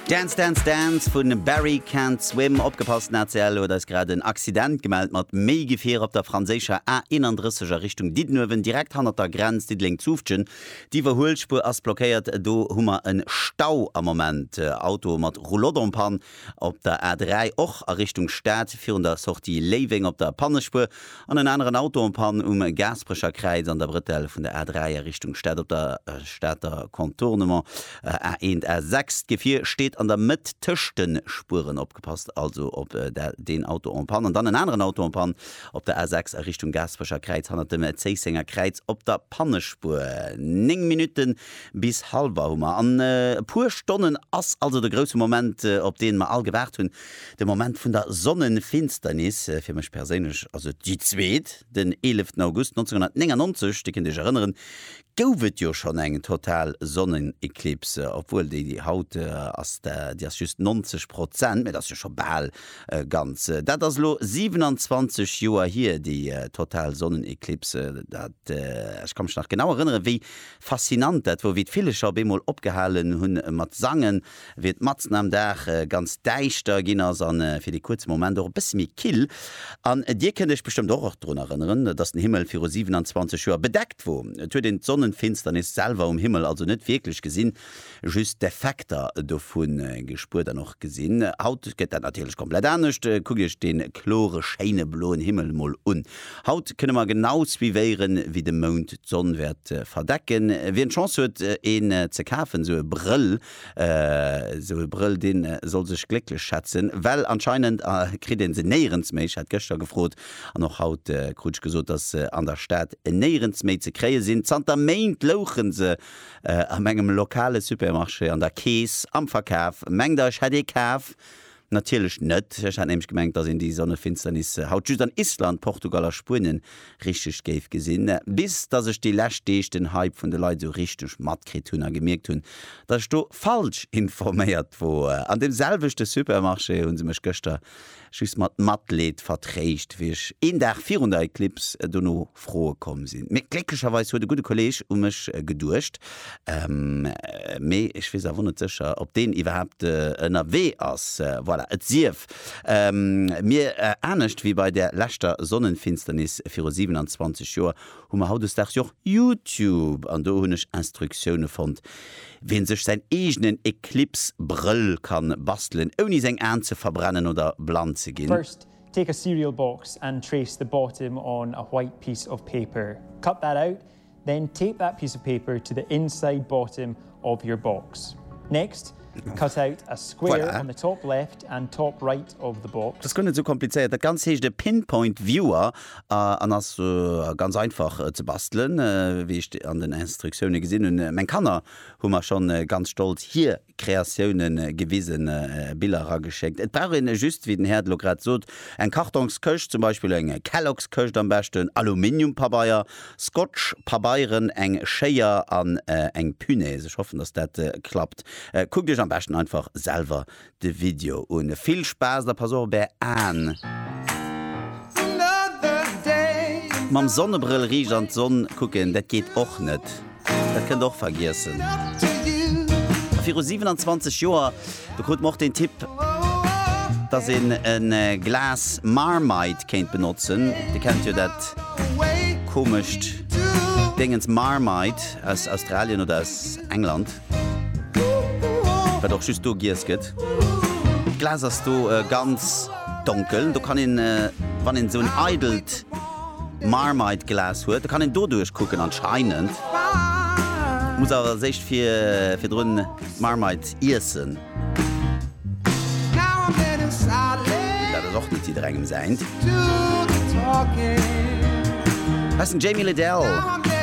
Dance Dance Dance vun Barry Can't Swim. Opgepasst, den ACL huet eis grad en Accident gemellt mat méi Gefier op der franséischer A 31 a Richtung Diddenuewen, direkt hannert der Grenz Diddeleng-Zufftgen. D'Iwwerhuelspuer ass blockéiert, do hu mer en Stau am Moment. Auto mat Roulotte en panne. Op der A3 och a Richtung Stad virun der Sortie Léiweng op der Pannespuer an en aneren Auto en Panne um Gaasperecherkräiz an der Brëtell vun der A3 a Richtung Stad op der Stater Contournement A1, A6. D'Gefier steet an der Mëtt tëscht de Spueren. Opgepasst also op deen Auto en Panne. An dann en aneren Auto en Panne op der A6 a Richtung Gaasperecherkräiz hannert dem Zéissenger Kräiz op der Pannespuer. Néng Minutten Bis halwer hu mer an e puer Stonnen ass also de grousse Moment, op deen mer all gewaart hunn, de Moment vun der Sonnenfinsternis. Fir mech perséinlech ass et déi zweet. Den 11 August 1999, Dir kënnt Iech erënneren, gouf et jo schonn eng total Sonneneklipse, obwuel déi haut ass, déi ass just 90 Prozent, mä dat ass jo scho bal ganz. Dat ass elo 27 Joer hier, déi total Sonneneklipse. Dat, ech ka mech nach genau erënneren, wéi Faszinant, dat wor wéi d'Villecher op eemol opgehalen hun mat sangen, wéi et matzen am Dag ganz däischter gin as an fir dee kuerze Moment och e bësse méi kill. An dir kënnt iech bestëmmt och drun erënneren, dass den Himmel viru 27 Joer bedeckt wor. Et huet een d'Sonnenfinsternis selwer um Himmel also net wierklech gesin. just d'Effekter dovu gespuert an och gesinn. Haut gëtt dat natierlech komplett anescht. Kuckt Iech de klore, schéine bloen Himmel mol un. Haut kënne mer genau suivéieren, wéi de Mound d'Sonn wäert verdecken. Wien d'Chance huet, een ze kafen, esou e Brëll, esou e Brëll, dee soll sech glécklech schätzen, well anscheinend kritt ee se néierens méi. Ech hat gëschter gefrot an och haut krut ech gesot, dass se an der Stad néierens méi ze kréie sinn. Zanter Méint louche se A mengem lokale Supermarché, an der Kees, am Verkaf, mengt der ech hätt ee kaf? Natierlech net, ech hat nämlech gemengt dass een déi Sonnefinsternis haut just an Island, Portugal a Spuenien richteg géif gesinn. Bis dass ech déi lescht Deeg den Hype vun de Leit esou richteg matkritt hunn a gemierkt hunn dass ech do falsch informéiert woer. An deem selwechte Supermarché hu se mech gëschter Just mat Matleed vertréischt, wéi ech een Dag virun der Eclipse dono Froe komm sinn. Mee glécklecherweis huet e gudde Kolleeg u mech geduecht. Mee ech weess awer net sécher, ob deen iwwerhaapt ënnerwee ass. Voilà, et sief mir, anescht wéi bei där leschter Sonnenfinsternis viru 27 Joer, Hu mer hautdesdaags jo och YouTube an do hunn ech Instruktioune fonnt wéi e sech säin eegenen Eclipse Brëll kann bastelen ouni seng Aan ze verbrennen oder blann ze ginn. First, take a cereal box and trace the bottom on a white piece of paper. Cut that out, then tape that piece of paper to the inside bottom of your box. Next, cut out a square on the top left and top right of the box. Dat ass guer net esou komplizéiert. Dat Ganzt heescht e Pinpoint Viewer an ass ganz einfach ze bastelen, wéi ech an den Instruktioune gesinn hunn. Meng Kanner hu mer schonn ganz stolz hir Kreatioune gewisen, Biller erageschéckt. Et brauch een just, wéi den Här et elo grad sot, eng Kartongskëscht, zum Beispill eng Kelloggskëscht am beschten, Aluminiumpabeier, Scotch, Pabeieren, eng Schéier an eng Punaise. Ech hoffen, dass dat klappt. Kuckt iech am beschten einfach selwer de Video un. Vill Spaass a pass op op är Aen! Mam Sonnebrëll riicht an d'Sonn kucken, dat geet och net. Dat kënnt och vergiessen. A viru 27 Joer, do krut mer och den Tipp, dass een e Glas Marmite kéint benotzen. Dir kennt jo dat komescht Déngens Marmite aus Australien oder aus England, wat och just do giess gëtt. D'Glas ass do ganz donkel. Do kann een, wann een esou en eidelt. Marmite Glas huet, da kann een doduerch kucken anscheinend. Muss awer als éischt fir virdrun d'Marmite iessen. Dat ass och net jidderengem säint. Hei ass den Jamie Lidell.